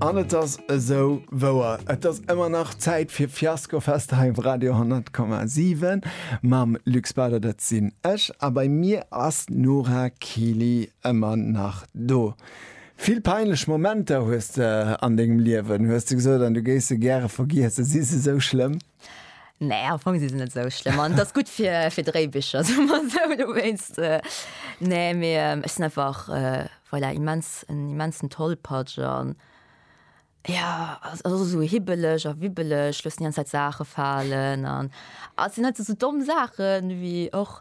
An et ass esou wouer, et ass ëmmer nach Zäit fir Fiaskofest hei op Radio 10,7 mam Luc Spader, dat sinn ech, a bei mir ass d'Nora Kili ëmmer nach do. Vill peinlech Momenter hues de an dengem Liewen, hues de gesot, an du géifs se gäre vergiesse. Si se esou schlëmm? Nee, am Fong si se net sou schlëmm an ass gutt fir fir Dréibicher soe mer esou dowéinst. Nee, mee ech sinn einfach voilà immens en immensen Tollpatsch an jo ass ass och esou hibbeleg a wibbeleg, loossen déi ganz Zäit Saache falen an ass sinn net esou domm Saachen wéi och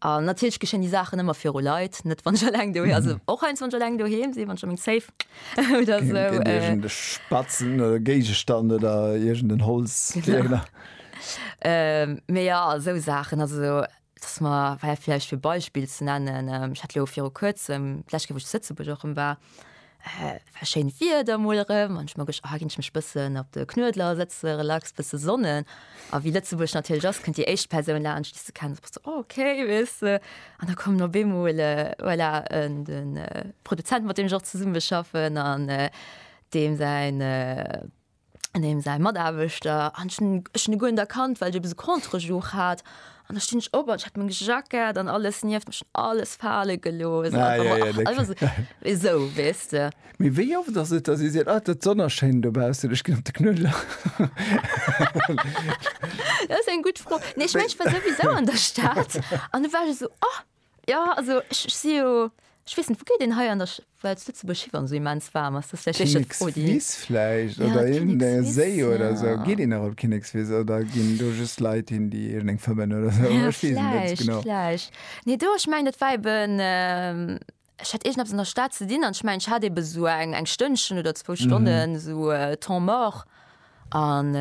An natierlech geschéien déi Saachen ëmmer viru Leit, net wann ech eleng doheem, also och heiansdo wann ech eleng doheem sinn, wann ech a meng Safe oder esou. Gëtt iergend e spatzen Géigestand oder iergend en Holzbiergler. Mee jo, esou Saachen, also dass mer, well vläicht fir e Beispill ze nennen, ech hat elo viru Kuerzem, d'lescht Kéier wou ech zu Lëtzebuerg och rëm war, war schéint Wieder mol erëm an ech mer gech, ah ginn ech mech bëssen op de Knuedler sëtze, relax, bësse sonnen. A wéi Lëtzebuerg natierlech ass, kënnt déi éischt Persoun laanscht, déi s de kenns, bist du oh okay, weess de. An da kommen op eemol voilà en de Produzent, mat deem ech och zesummeschaffen an deem säin, an deem säi Mataarbechter an ech hunn ech hunn e guer net erkannt, well ech eppes e Contre-jour hat an da stinn ech op an ech hat meng Jackett an alles nieft mech, alles fale gelooss an einfach mol, ach, einfach esou, esou, weess de. Mee wéi oft ass et, datt ee seet, ah, d'Sonn ass schéin dobaussen, ech ginn op de Knuedler? Dat ass eng gutt Fro. Nee, ech mengen, ech war souwisou an der Stad an du war ech esou, oh. Jo also ech si jo, ech weess net wou geet een hei an der Schwäiz, Lëtzebuerg hi wann esou immens waarm ass? Dat ass vläicht éischter d'Fro déi. Kinnekswiss vläicht oder iergendee Séi oder esou. Geet een nach op Kinnekswiss oder ginn do just Leit hin déi iergendeng fëmmen oder esou? Ech weess et net genau. Vläicht, vläicht. Nee do, ech mengen dat war eben. Ech hat iergend eppes an der Stad ze dinn an ech mengen ech hat eben esou eng Stënnchen oder zwou Stonnen esou temps mort an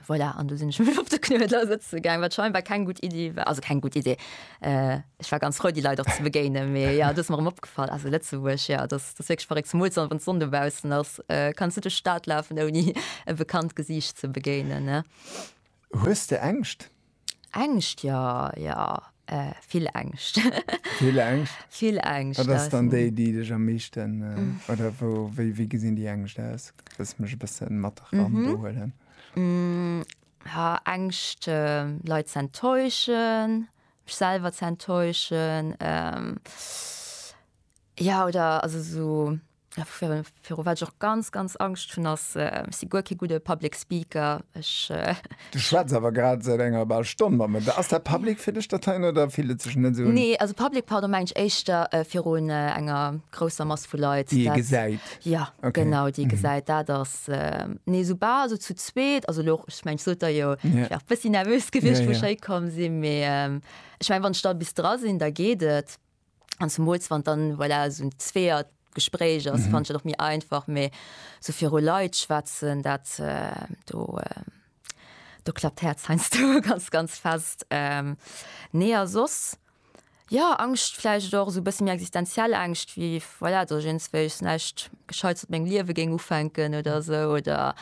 voilà an du sinn ech mech op de Knuedler sëtze gaang, wat scheinbar keng gutt Iddi war, also keng gutt Iddi, ech war ganz frou déi Leit och ze begéinen, mee jo et ass mer erëm opgefall, also Lëtzebuerg jo et ass et ass wierklech verréckt, zemools dann wann d'Sonn dobaussen ass kanns du duerch d'Stad lafen ouni e bekannt Gesiicht ze begéinen ne. Hues de Ängscht? Ängscht jo, jo, vill Ängscht. Vill Ängscht? Vill Ängscht. Wat ass dann déi, déi dech am meeschten, oder wou, wéi, wéi gesinn déi Ängscht aus? Dass ech mech e bësse mat eran do huelen. Ha Ängscht, Leit ze enttäuschen, mech selwer ze enttäuschen, jo, oder also esou. Virun wat ech och ganz, ganz Angscht hunn, ass, ech si guer kee gudde Public Speaker, ech. Du schwätz awer grad säit enger bal Stonn mat mir. Ass dat public fir dech, dat heien, oder fillt et sech net esou un? Nee, also public, pardon, mengen ech éischter virun enger grousser Mass vu Leit. Déi ee gesäit. Jo, genau, déi ee gesäit. Dat ass, nee, soubal esou zu zweet, also elo, ech mengen, ech sot der jo, ech war e bëssi nervös gewiescht, wou ech héikomm sinn, mee ech mengen, wann ech da bis dra sinn, da geet et. an zumools wann dann voilà, so un zweer Gespréich ass mhm. fand och mir einfach méi so viru Leiit schwätzen dat äh, do äh, do klappt herz heinsst du ganz ganz fest ähm, nee a sos ja angst fleisch doch so bis mir existenziell angst wie voilà, du jens welch nächt gescheit op meng liewe ging ufänken oder so oder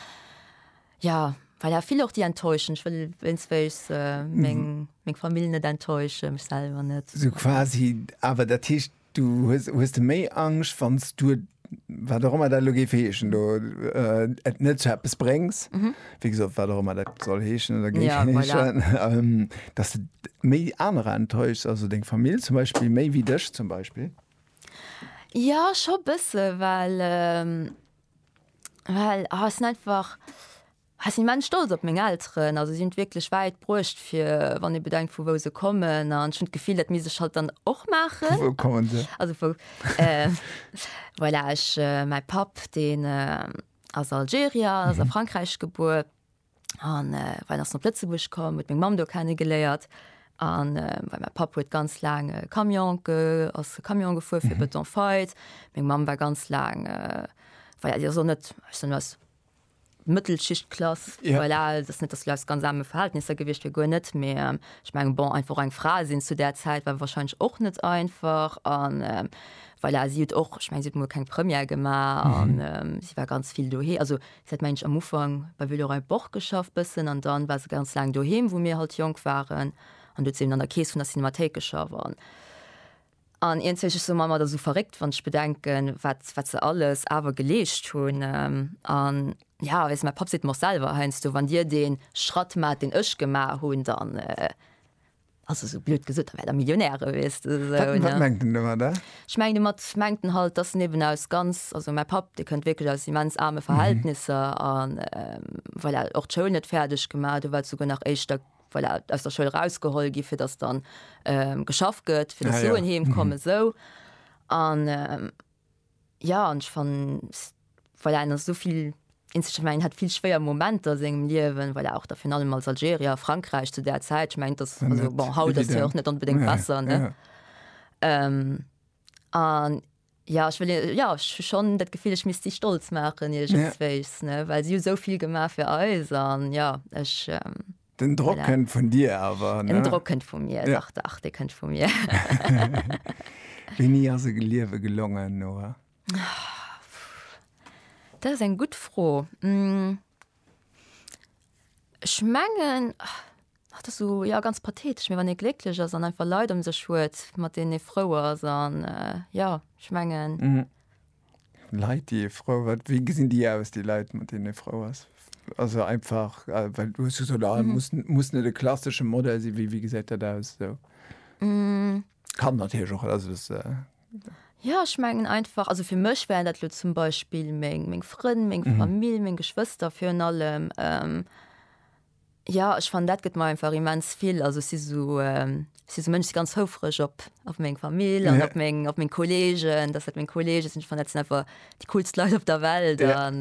Ja, well ja vill och déi enttäuschen. Ech wëll wéinstwéigs meng, meng Famill net enttäuschen, mech selwer net. Sou quasi, awer dat heescht, du hues, hues de méi Angscht, wann s du et, wat och ëmmer dat elo géif heeschen do, et net zu eppes bréngs, wéi gesot, wat och ëmmer dat soll heeschen oder géif heeschen, dass de méi anerer enttäuschs, also deng Famill zum Beispill méi wéi dech zum Beispill? Jo, scho bësse, well. Well ech sinn einfach, ech sinn immens stolz op meng Elteren. Also si hunn et wierklech wäit bruecht fir, wann ee bedenkt vu wou se kommen. An ech hunn d'Gefill, dat misst ech halt dann och maachen. Vu wou kommen se? Also vu, voilà, ech, mäi Papp deen ass Algerier, ass a Frankräich gebuer. an äh, war ass op Lëtzebuerg komm, huet meng Mam do kennegeléiert an äh, weil mein Papp huet ganz lang äh, Camion ge, ass Camion gefuer fir mhm. Beton feit. Meng Mam war ganz lang äh, war ja, so net was Mëttelschichtklass ja. voilà, das net das läuft ganz arme Verhältnisse gewicht fir goer net mé ähm, ich mein, bon einfach eng Fra sinn zu der Zeit war wahrscheinlich och net einfach an äh, weil er sieht och ich mein, sieht keng Premier gemacht mhm. und, ähm, sie war ganz viel dohe also Se hat mensch am Ufank bei Villeroy Boch geschafft bëssen an dann war se ganz laang doheem wou mir halt jonk waren an do huet se eben an der Kees vun der Cinemathéik geschafft an an iergenzwéi ech soen mer ëmmer et ass esou verréckt wann ech bedenken wat wat se alles awer geleescht hunn an ja weess mäi Papp seet mer och selwer heiansdo wann dir dee Schratt maacht deen ech gemaach hunn dann Also sou blöd gesot, da wär der Millionär geweest oder sou, ne? Wat mengt en domat, a? Ech mengen domat mengt en halt, dass en eben aus ganz, also mäi Papp, dee kënnt wierklech aus immens aarme Verhältnisser a voilà, och d'Schoul net fäerdeg gemaach, do war souguer nach éischter voilà, aus der Schoul erausgeholl gi fir dass dann geschafft gëtt, fir dass Suen heem kommen, sou. An Ja an ech fannen voilà en ass esou vill Instrument, en hat vill schwéier Momenter a sengem Liewen voilà och da virun allem als Algerier a Frankräich zu där Zäit, ech mengen et ass also bon haut ass jo och net onbedéngt besser ne an ja ech wëll hir ja ech hu schonn dat Gefill ech misst si stolz maachen iergendswéis ne well si hu esou vill gemaach fir eis an ja ech. Den Drock kënnt vun dir awer. Den Drock kënnt vu mir ja. Dach, dach, dee kënnt vu mir. Wéini ass e Geliewe gelongen, Noa? Dat ass eng gutt Fro. Ech mengen, dat ass esou, jo, ganz pathetesch, mee wann ee glécklech ass an einfach Leit ëm sech huet, mat deenen ee frou ass an, jo, ech mengen. Leit déi ee frou wat wéi gesinn déi aus déi Leit mat deenen ee frou ass? Also einfach äh, well du hues gesot ah, mhm. muss, muss net de klassische Modell si wie wie gesäit dat aus so. mm. Kan natierch och also das, äh, Ja ech mengen einfach also fir mech wären dat lo zum Beispiel meng meng Frënn, meng mhm. Famill, meng Geschwëster fir un allem. Ähm, Jo ech fannen dat gëtt mer einfach immens vill. Also ech si sou ech si sou Mënsch si ganz houfreg op op meng Famill an op meng op meng Kolleegen, datt dat meng Kollege sinn. Ech fannen dat sinn einfach déi coolst Leit op der Welt an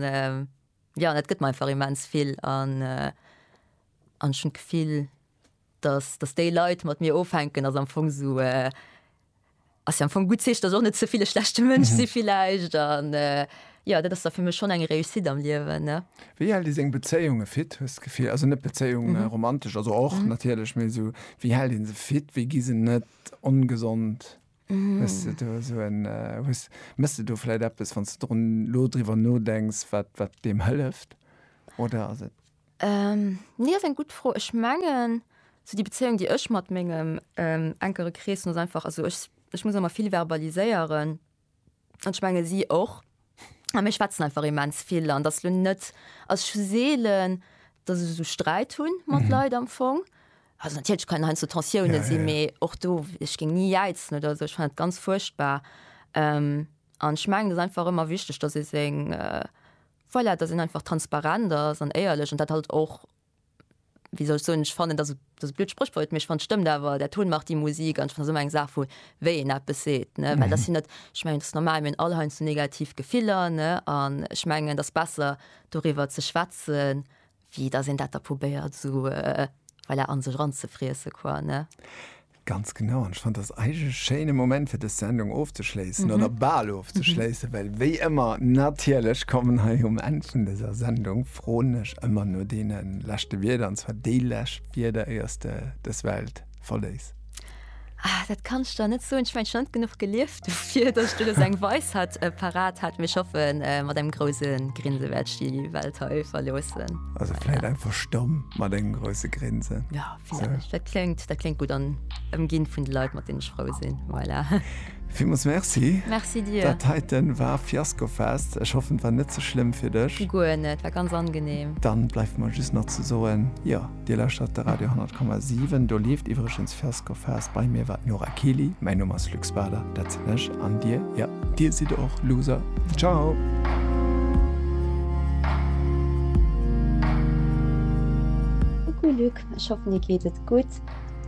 jo an dat gëtt mer einfach immens vill an an ech hunn d'Gefill, datt datt déi Leit mat mir ofhänken ass am Fong sou. Ass jo am Fong gutt Zeechen, dass och net ze vill e schlechte Mënsch si villäicht an jo, dat ass da fir mech schonn eng Réussite am Liewen, ne. Wéi hält ee seng Bezéiunge fit, hues de d'Gefill? Also net Bezéiung romantesch, also och natierlech, mee esou wéi hält ee se fit, wéi gi se net ongesond? Hues de do esou en, hues, méchs de do vläicht eppes, wann s de drun, elo driwwer nodenks, wat, wat deem hëlleft oder ass et Nee ass eng gutt Fro. Ech mengen sou déi Bezéiung déi ech mat mengem enkere Krees hunn ass einfach, also ech ech muss ëmmer vill verbaliséieren an ech menge si och a mir schwätzen einfach immens vill an et ass lo net, also ech hu seelen, datt ech esou Sträit hunn mat Leit am Fong. Also natierlech kann heiansdo Tensiounen sinn, mee och do, ech géing ni jäizen oder esou, ech fannen et ganz fuerchtbar an ech mengen et ass einfach ëmmer wichteg, datt ee seng Voilà, dass een einfach transparent ass an éierlech an dat halt och, wéi soll ech soen, ech fannen, dat ass e blöd Spréchwort, mee ech fannen, et stëmmt awer, Der Ton macht die Musik. An ech fannen, dat ass ëmmer eng Saach vu wéi een eppes seet, ne, well dat sinn net, ech mengen, dat ass normal, mir hunn all heiansdo negativ Gefiller, ne, an ech mengen, et ass besser doriwwer ze schwätzen, Wie dass een dat da probéiert esou voilà an sech eranzefriessen quoi ne? Ganz genau an ech fannt dass eigentlech e schéine Moment fir dës Sendung ofzeschléissen oder bal ofzeschléissen, well wéi ëmmer natierlech kommen hei um Enn vun dëser Sendung Froen ech ëmmer no deene leschte Wierder an zwar déi lescht Wierder iers de dës Welt verléiss? Ah, dat kann ich da net so ich mein schon genug gelieft dafür dass du das eng weiß hat äh, parat hat mir schaffen äh, mat dem großen grinse werd die welt he verlosen also vielleicht ja. einfach stumm mal den große grinse ja so. da klingt da klingt gut an emgin von die leute mit den schrau sind voilà. Vill muss Merci. Merci dir. Dat heiten war Fiasko fest. Ech hoffen war net ze so schlimm fir dech. Guer net war ganz angenehm. Dann bleif man just nach ze soen. Ja Dir lauschtert de Radio 10,7. Do leeft iwwregens First Go Fast. Bei mir war d'Nora Kiely. Mäin Numm ass Luc Spader, dat sinn ech. An Dir? Jo, Dir sidd och Loser. Ciao! Coucou Luc, ech hoffen dir geet et gutt.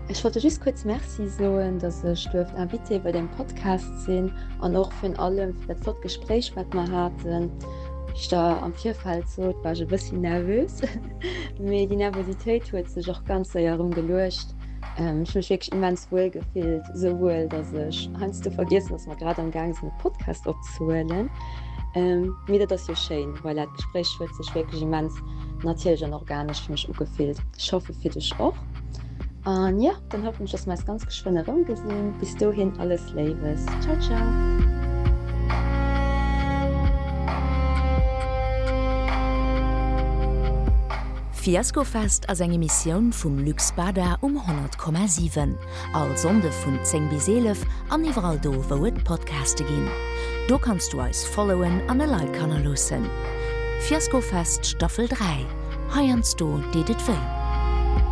Ech wollte just kuerz Merci soen, datt ech duerft Invité bei dem Podcast sinn an och vun allem fir dat flott Gespréich wat mer haten. Wéi ech der am Virfeld sot, war ech e bëssi nervös. Mee déi Nervositéit huet sech och ganz séier erëm geluecht. Ech mech wierklech immens wuel gefillt, esou wuel, datt ech heiansdo vergiessen, datt mer grad am gaang sinn e Podcast opzehuelen. Mee dat ass jo schéin, voilà, d'Gespréich huet sech wierklech immens natierlech an organesch fir mech ugefillt. Ech hoffe fir dech och. An jo. Dann hoffen ech dass mer eis ganz geschwënn erëm gesinn. Bis dohin alles Léiwes. Ciao ciao. Fiaskofest ass eng Emissioun vum Luc Spada um 100,7. All Sonnde vun 10 bis 11 an iwwerall do, wou et Podcaste ginn. Do kanns du eis followen an e Like hannerloossen. Fiaskofest Staffel 3, heiansdo deet et wéi.